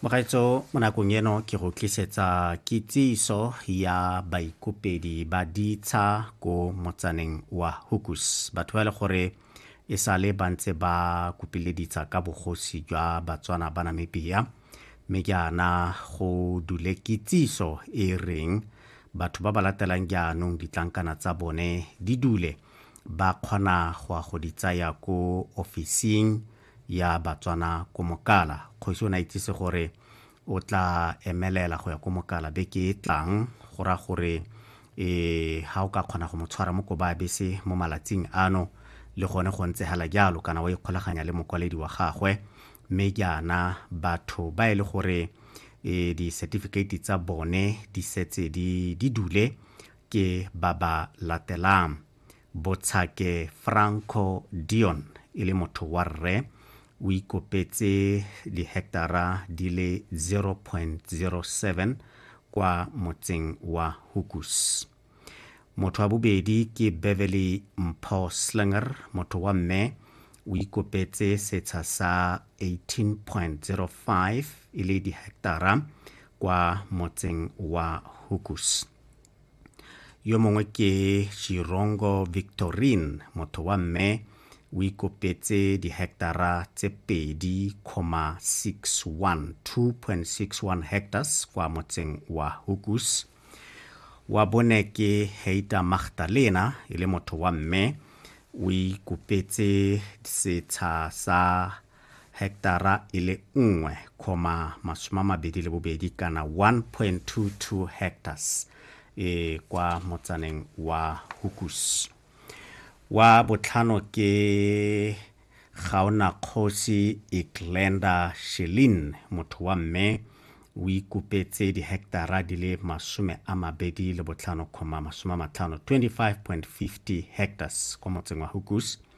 mogaetso mo nakong eno ke go tlisetsa kitsiso ya baikopedi ba ditsha ko motsaneng wa hukus batho ba e le gore e sale ba ntse ba kopile ditsha ka bogosi jwa batswana ba namibia mme jaana go dule kitsiso e reng batho ba ba latelang jaanong ditlankana tsa bone di dule ba kgona go ya go di tsaya ko ofising ya batswana ko mokala kgosi o ne a itsise gore o tla emelela go ya ko mokala beke e tlang go ra gore e ha o ka kgona go mo tshwara mo koba bese mo malatsing ano le gone go ntse hala jalo kana wa ikgolaganya le mokwaledi wa gagwe mme jaana batho ba e le gore e di-certificate tsa bone di setse di dule ke ba ba latelang Botshake Franco Dion e le motho wa rre o ikopetse diheketara di le 0.07 kwa motseng wa Hukus. Motho wa bobedi ke Beverly Mpho Slinger, motho wa mme o ikopetse setsha sa 18.05 e le diheketara kwa motseng wa Hukus. yo mongwe ke chirongo victorine motho wa mme o ikopetse dihectara tse pedi comma 61 2.61 hectares kwa motseng wa hukus wa bone ke heita magdalena e le motho wa mme o ikopetse setsha sa heketara e le 1,22 kana 1.22 hectares e kwa motsaneng wa Hukus. Wa botlhano ke Gaonakgosi Iglenda Shelin motho wa mme o ikupetse diheketara di le masome a mabedi le botlhano kgoma masome a matlhano 25.50 hectares kwa motseng wa Hukus